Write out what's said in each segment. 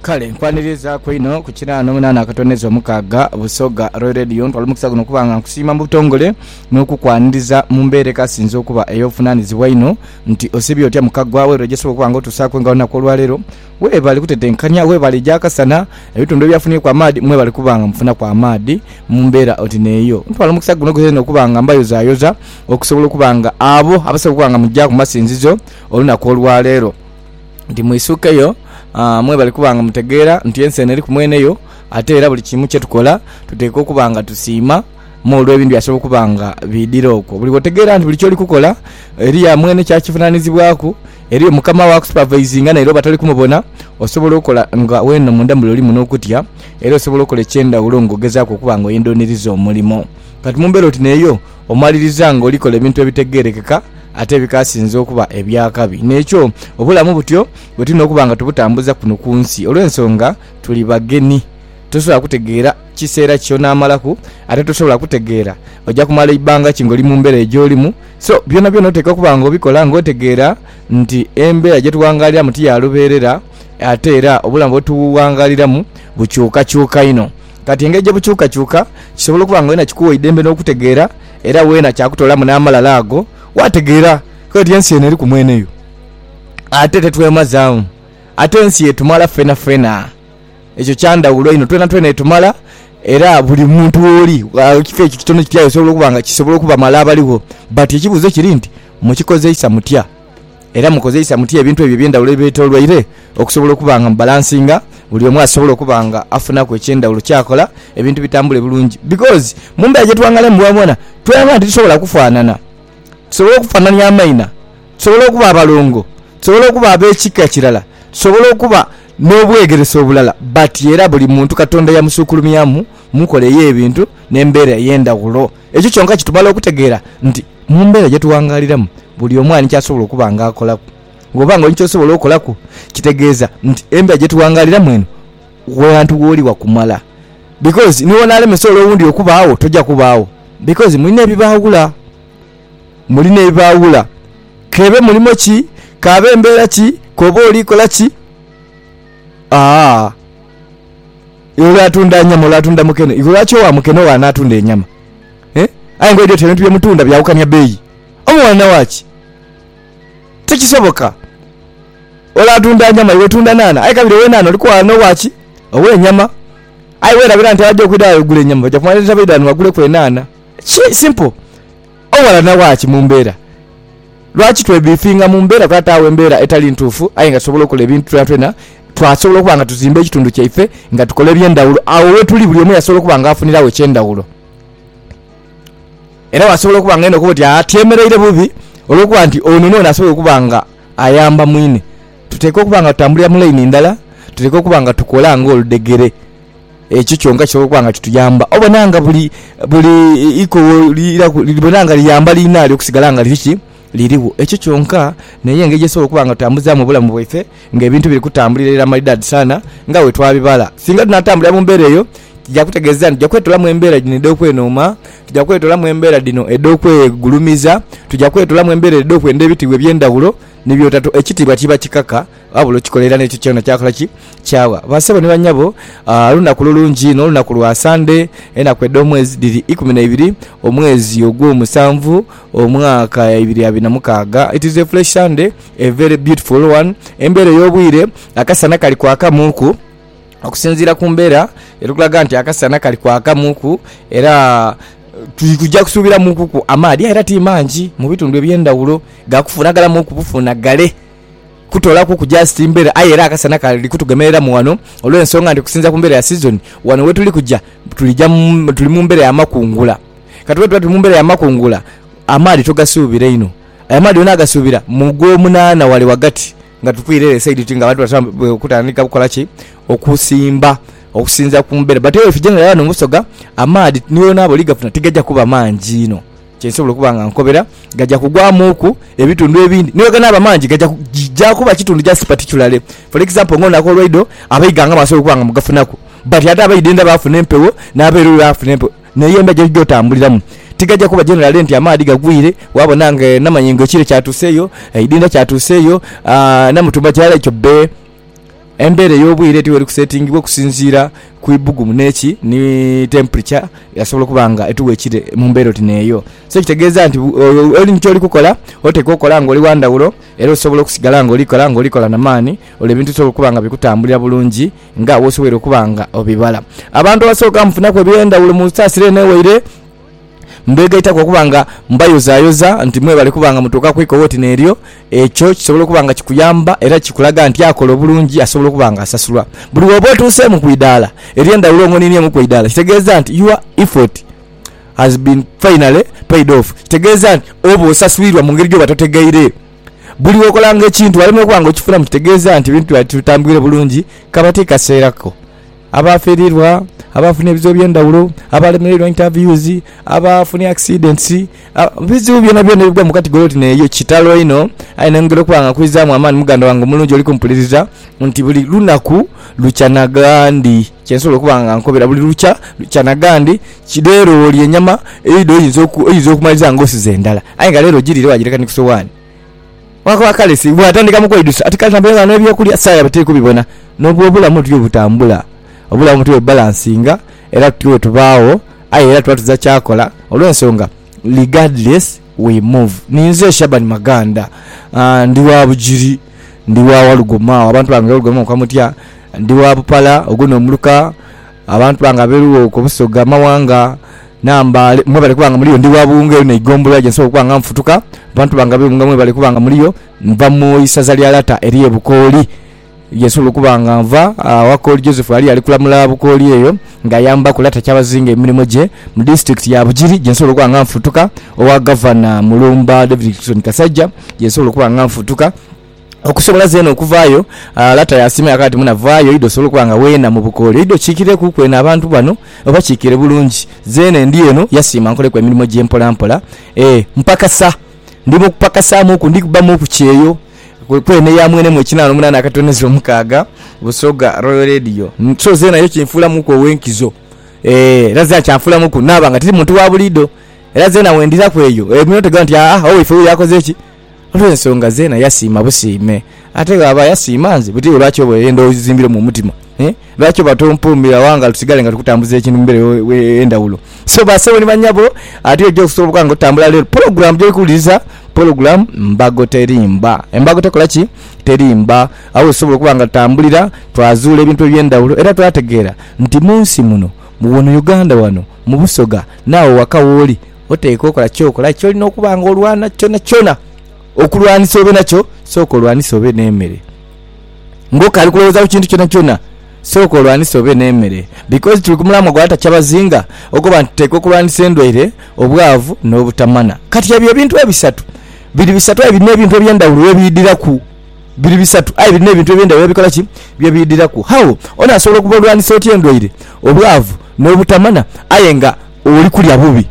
kale nkwanirizaku inho ku kinaana omunaana akatoneza omukaaga busoga roy radio ntwala omukisa guno okuba nga nkusiima mu butongole n'okukwaniriza mu mbeera ekasinze okuba ey'obuvunaanyizibwa inho nti osibye otya mukagwa we lwegyesobola okuba nga otuusaako nga olunaku olwaleero weebale kutetenkanya weebale egya kasana ebitundu ebyafunyeku amaadhi mwebale kuba nga mufunaku amaadhi mu mbeera oti neeyo ntwala omukisa guno gwena okuba nga mbayozayoza okusobola okuba nga abo abasobola okuba nga mugya ku masinzizo olunaku olwaleero nti mwisukeyo mwebali kuba nga mutegeera nti ensi eno eriku mwene yo, ate era buli kimu kye tukola tuteekwa okuba nga tusiima mu olw'ebintu byasobola okuba nga biidhira okwo. Buli wotegeera nti buli kyoli kukola eriyo amwene kya kivunanizibwaku, eriyo mukama wo akusupavaizinga naire oba toli kumubona, osobola okola nga wena munda mule olimu n'okutya era osobola okola eky'endhawulo nga ogezaaku okuba nga oyendha oniriza omulimo kati mu mbeera oti n'eyo. Omaliriza nga oli kola ebintu ebitegeerekeka ate ebikasinze okuba eby'akabi. N'ekyo obulamu butyo bwe tulina okuba nga tubutambuza kuno ku nsi. Olw'ensonga tuli bageni, tosobola kutegeera kiseera ky'onaamalaku, ate tosobola kutegeera oja kumala ibanga ki ng'oli mu mbeera eyo gy'olimu. So, byonabyona oteekwa okuba nga obikola ng'otegeera nti embeera gye tughangaaliramu ti ya lubeerera, ate era obulamu bwe tughangaaliramu bukyukakyuka inho. Kati engeri gye bukyukakyuka kisobola okuba nga weena kikuwa eidembe n'okutegeera, era weena kyakutoolamu n'amalala ago waategeera. Kale oti ensi eno eriku mwene yo, ate tetwemazaamu. Ate ensi etumala fenafena. Ekyo kya ndhawulo inho, twenatwena etumala, era buli muntu w'oli, ekifo ekyo kitono kitya aye osobola okuba nga kisobola okubamala abaligho. But ekibuuzo kiri nti, mukikozeisa mutya? Era mukozeisa mutya ebintu ebyo eby'endhaghulo ebibetoloire okusobola okuba nga mubalansinga buli omu asobole okuba nga afunaku eky'endhaghulo ky'akola ebintu bitambule bulungi? Bikoozi mu mbeera gye twangalemu bwonabwona twelaga nti tusobola okufaanana. Tusobola okufaanania amaina, tusobola okuba abalongo, tusobola okuba ab'ekika kirala, tusobola okuba n'obwegerese obulala. But era buli muntu Katonda yamusukulumyamu. mu nkola ey'ebintu n'embeera ey'endhaghulo. Ekyo kyonka kitumala okutegeera nti mu mbeera gye tughangaaliramu buli omu ali ni ky'asobola okuba nga akolaku. Bw'oba nga oli ni ky'osobola okolaku, kitegeeza nti embeera gye tughangaaliramu eno ghantu w'oli wa kumala. Bikozi ni bw'onaalemesa ole owundi okubaagho, toja kubaagho. Bikozi muli n'ebibaawula. Muli n'ebibaawula. K'ebe mulimo ki, k'abe mbeera ki, k'obe oli kola ki, aa. Iwe olwo atunda nyama olwo atunda mukene iwe lwaki owa mukene owa natunda enyama eeh aye nga oidhi oti ebintu byemutunda byawukania beeyi omuwanana waki tikisoboka ole atunda nyama iwe tunda naana aye kabiri owenaana oli kuwanana owaki owenyama aye werabira nti abaja okwidha wagula enyama baja kumalira baidha wano baguleku enaana ki simple. Owalana wa ki mu mbeera? Lwaki twebbiifinga mu mbeera? Kuba tutaagho embeera etali ntuufu aye nga tusobola okola ebintu twonatwona. Twasobola okuba nga tuzimba ekitundu kyaife nga tukola eby'endhawulo. Agho wetuli buli omu yasobola okuba nga afuniragho eky'endhawulo. Era wasobola okuba nga aidha okuba oti atyemereire bubi olw'okuba nti ono n'ono asobola okuba nga ayamba mwine. Tuteekwa okuba nga tutambulira mu laini ndala, tuteekwa okuba nga tukola ng'oludhegere. Ekyo kyonka kisobola okuba nga kituyamba obona nga buli ikogho libona nga liyamba liinalyo okusigala nga liri ki? Lirigho. Ekyo kyonka n'eyo engeri gye tusobola okuba nga tutambuzaamu obulamu bwaife ng'ebintu biri kutambulira irala maidaadi sana nga bwe twabibala. Singa tunaatambulira mu mbeera eyo, kija kutegeeza nti tuja kwetolamu embeera dhino edh'okwenooma, tuja kwetolamu embeera dhino edh'okwegulumiza, tuja kwetolamu embeera edh'okwenda ebitiibwa eby'endhaghulo, ni by'otato ekitiibwa kiba kikaka Ghabula okikola era n'ekyo kyona kyakola ki? Kyawa. Baasebo ni banyabo, lunaku lulungi inho, olunaku lwa Sande. Enaku edh'omwezi dhiri ikumi na ibiri, omwezi ogwomusanvu, omwaka ibiri abiri na mukaaga. It is a fresh Sunday, a very beautiful one. Embeera ey'obwire, akasana kali kwakamuuku. Okusinziira ku mbeera, eri kulaga nti akasana kali kwakamuuku era tuja kusuubiramuukuku amaadhi aye era ti mangi mu bitundu eby'endhawulo, ga kufuunagalamuuku bufuunagale. kutolaku ku just mbera aye era akasana kali kutugemerera mu wano olwensonga nti kusinzira ku mbera ya season wano wetuli kuja tulija tuli mu mbera ya makungula kati bwetuba tuli mu mbera ya makungula amaadhi togasubira inho aye amaadhi wena agasubira mu gwo munana wale wagati nga tukwira ere esaidi oti nga abantu batandise okutandika okola ki okusimba okusinzira ku mbera but aye wetuje nga wano mu busoga amaadhi ni wonaba oli gafuna tigaja kuba mangi inho. Kye nsobola okuba nga nkobera, gaja kugwamuuku ebitundu ebindi. Ni bweganaaba mangi, gaja ku, ja kuba kitundu just particularly. For example, nga onaku olwaidho, abaighanga basobola okuba nga mugafunaku, but ate abaidhendha baafuna empewo, n'abeeru baafuna empewo. Naye embeera gy'oja otambuliramu tigaja kuba generally nti amaadhi gagwire, waabona nga e Namayingo ekire kyatuusa eyo, e Idhendha kyatuusa eyo, aa Namutumba kirala ekyo bbe. Embeera ey'obwire ti weri kusetingibwa okusinziira ku ibugumu n'eki ni temperature yasobola okuba nga etuwa ekire mu mbeera oti n'eyo. So ekitegeeza nti oli ni kyoli kukola oteekwa okukola nga oli wa ndhawulo era osobola okusigala nga oli kola nga oli kola na maani olwo ebintu bisobole okuba nga bikutambulira bulungi nga wosoboire okuba nga obibala. Abantu abasooka mufunaku eby'endhawulo mu nsaasira eno ewaire. Mbeegaitaku okuba nga mbayozayoza nti mwebale kuba nga mutuuka ku ikowa oti n'eryo. Ekyo kisobola okuba nga kikuyamba era kikulaga nti akola obulungi asobola okuba nga asasulwa. Buli wooba otuuseemu ku idaala ery'endhawulo ng'oninieemu ku idaala kitegeeza nti your effort has been finally paid off. Kitegeeza nti oba osaswiirwa mu ngeri gy'oba totegeire. Buli w'okolanga ekintu walemera okuba nga okifunamu kitegeeza nti ebintu byaba tibitambwire bulungi kaba ti kaseera ko. Abaafiirirwa, abaafunha ebizibu eby'endhaghulo, abaalemereirwa interviews, abaafunha accidents, ebizibu byonabyona ebigwa mu katigori oti n'eyo, kitalo inho. Aye neyongera okuba nga nkwizaamu amaani muganda wange omulungi oli kumpuliriza nti buli lunaku lukya na ghandi. Kye nsobola okuba nga nkobera buli lukya lukya na ghandi. Leero olya enyama, eidho oyinza okumaliriza ng'osize ndala. Aye nga leero ogiriire waagireka ni ku sowaani. Wakoba kale si bwatandika mu kweidhusa ati kale tambulira ghano eby'okulya saa yabe teri kubibona. N'obwo obulamu butyo bwebutambula. Obulamu butyo bwebubalansinga era tutyo bwetubaagho aye era tuba tuza kyakola olw'ensonga regardless we move. Ninze Shaban Maganda, ndi wa Bugiri, ndi wa Walugoma agho abantu bange Walugoma mu Kamutya, ndi wa Bupala ogwo n'omuluka abantu bange abeeru okwo Busoga, Mawanga. Nambaale, mwebale kuba nga muliyo. Ndi wa buwunga eyo n'eigombolola gye nsobola okuba nga nfutuka. Abantu bange ab'eighunga mwebale kuba nga muliyo. Nva mu isaza lya lata ery'e Bukooli, ye nsobola okuba nga nva. Wakooli Joseph ghali ali kulamula Bukooli eyo ng'ayambaku lata Kyabazinga emirimo gye mu disiturikiti ya Bugiri gye nsobola okuba nga nfutuka. Owa Gavana Mulumba David Dickson Kasaija ye nsobola okuba nga nfutuka. okusobola zeena okuvaayo. Lata yaasiima yakoba ati, Muna, vaayo oidhe osobole okuba nga weena mu bukooli. Oidhe okiikirekuuku eno abantu bano, obakiikire bulungi. Zeena endi eno, yasiima nkoleku emirimo gye mpolampola. E, mpakasa. Ndi mu kupakasaamuuku, ndi kubbamuuku kyeyo. Kwe, kweene yaamwenemu ekinaana omunaana akatonezo omukaaga, Busoga Royal Radio. So, zeena ekyo kinfuulamuuku ow'enkizo. E, era zeena kyanfuulamuuku naaba nga tiri muntu wa buliidho. Era zeena bwe ndiraku eyo, e, bino tegamba nti, Aa, owaife wuyo akoze ki? olw'ensonga zeena yasiima busiime. Ate bw'aba yasiima nze, buti iwe lwaki oba oyenda ozimbiremu omutima? Eeh, lwaki oba tompuumira wangalo tusigale nga tukutambuza ekintu mu mbeera ey'endhawulo? So, bassebo ni bannyabo, ati oja okusobola nga otambula leero. Pulogulaamu gy'oli kuwuliriza, pulogulaamu mbago terimba. Embago tekola ki? Terimba. Agho we tusobola okuba nga tutambulira, twazuula ebintu eby'endhawulo era twaategeera nti mu nsi muno, wano Uganda wano, mu Busoga, n'agho ghaka w'oli, oteekwa okola ky'okola aye ky'olina okuba nga olwana kyonakyona okulwanisa obe nakyo, sooka olwanise obe n'emere. Ng'okaali kulowooza ku kintu kyonakyona, sooka olwanise obe n'emere. Bikozi tuli ku mulamwa gwa Atakyabazinga okoba nti tuteekwa okulwanisa endwaire, obwavu, n'obutamana. Kati ebyo ebintu ebisatu biri bisatu aye birina ebintu eby'endhawulo bye biidhiraku. Biri bisatu aye birina ebintu eby'endhawulo bye bikola ki? Bye biidhiraku. Agho onaasobola okuba olwanisa otya endwaire, obwavu, n'obutamana aye nga Oli kulya bubi,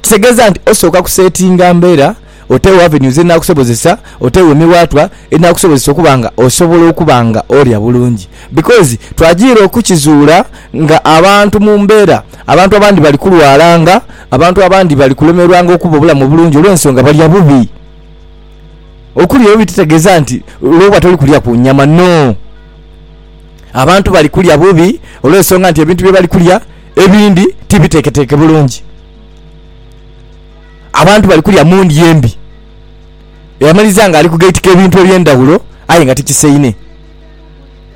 kitegeeza nti osooka kuseetinga mbeera oteewo avenues edhinaakusobozesa, oteewo emiwaatwa edhinaakusobozesa okuba nga osobola okuba nga olya bulungi. Because twajiira okukizuula nga abantu mu mbeera, abantu abandi bali kulwalanga, abantu abandi bali kulemerwanga okuba obulamu obulungi olw'ensonga balya bubi. Okulya obubi titegeeza nti lwoba toli kulya ku nyama, no. Abantu bali kulya bubi olw'ensonga nti ebintu bye bali kulya, ebindi tibiteeketeeke bulungi. Abantu bali kulya mu ndya embi. Yamalizia nga ali kugaitika ebintu eby'endhaghulo aye nga tikisaine.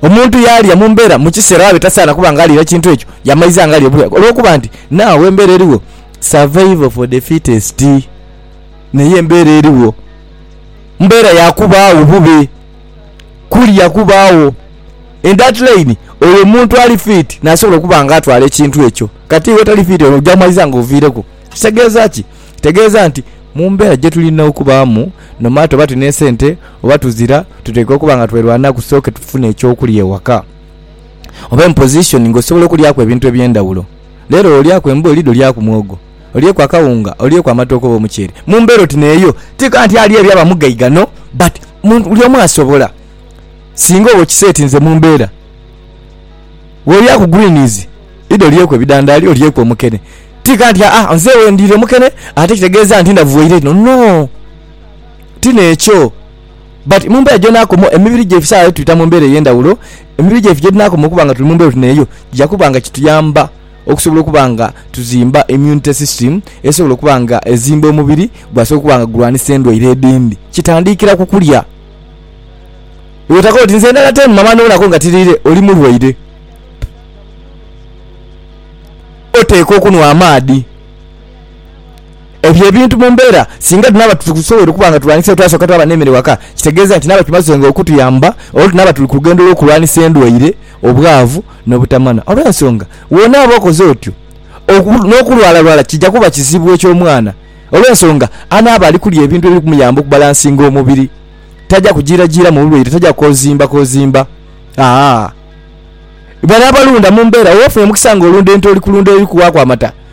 Omuntu yaalia mu mbeera mu kiseera ghaabe tasaana kuba nga aliira kintu ekyo, yamaiza nga ali obulwaire olw'okuba nti naagho embeera erigho survival for the fittest. Naye embeera erigho mbeera ya kubaagho bube. kulya kubaagho. In that line, oyo omuntu ali fiiti nasobola okuba nga atwala ekintu ekyo. Kati iwe otali fiiti ono oja maliza nga oviireku. Kitegeeza ki? Kitegeeza nti mu mbeera gye tulina okubaamu, no matter oba tulina esente oba tuzira, tuteekwa okuba nga twerwanaku tusooke tufune eky'okulya ewaka. Oba in position ng'osobola okulyaku ebintu eby'endhawulo. Leero olyaku embooli, dhi olyaku mwogo. olyeku akawunga, olyeku amatooke oba omuceere mu mbeera oti n'eyo. Ti ka nti ali ebyo aba mugaiga no, but mu, buli omu asobola. Singa oba okisetinze mu mbeera, w'olya ku greens, idho olyeku ebidhandaali, olyeku omukene. Ti ka nti, Aa, nze we ndiira omukene ate kitegeeza nti ndhavuwaire inho. No! Ti n'ekyo. But mu mbeera gy'onaakoma, emibiri gyaife saagho yo tubita mu mbeera ey'endhawulo, emibiri gyaife gye dhinaakoma okuba nga tuli mu mbeera oti n'eyo, kija kuba nga kituyamba. okusobola okuba nga tuzimba immunity system esobola okuba nga ezimba omubiri gwasobola okuba nga gulwanisa endwaire edhindhi. Kitandiikira ku kulya. Bw'otakola oti nze ndala ten mama n'obonaku nga tiriire, oli mulwaire. Oteekwa okunhwa amaadhi. Ebyo ebintu mu mbeera singa tunaaba titusobwoire okuba nga tulwanisa eyo twasooka twaba n'emere ghaka, kitegeeza nti naaba kimazenga okutuyamba olwo tunaaba tuli ku lugendo lw'okulwanisa endwaire, obwavu n'obutamanya. Olw'ensonga bw'onaaba okoze otyo, n'okulwalalwala kija kuba kizibu eky'omwana. Olw'ensonga anaaba ali kulya ebintu ebiri kumuyamba okubalansinga omubiri, taja kujiirajiiramu bulwaire, taja koziimbakoziimba. Aa Bano abalunda mu mbeera, oba ofunye omukisa ng'olunda ente oli kulunda eri kuwaaku amata,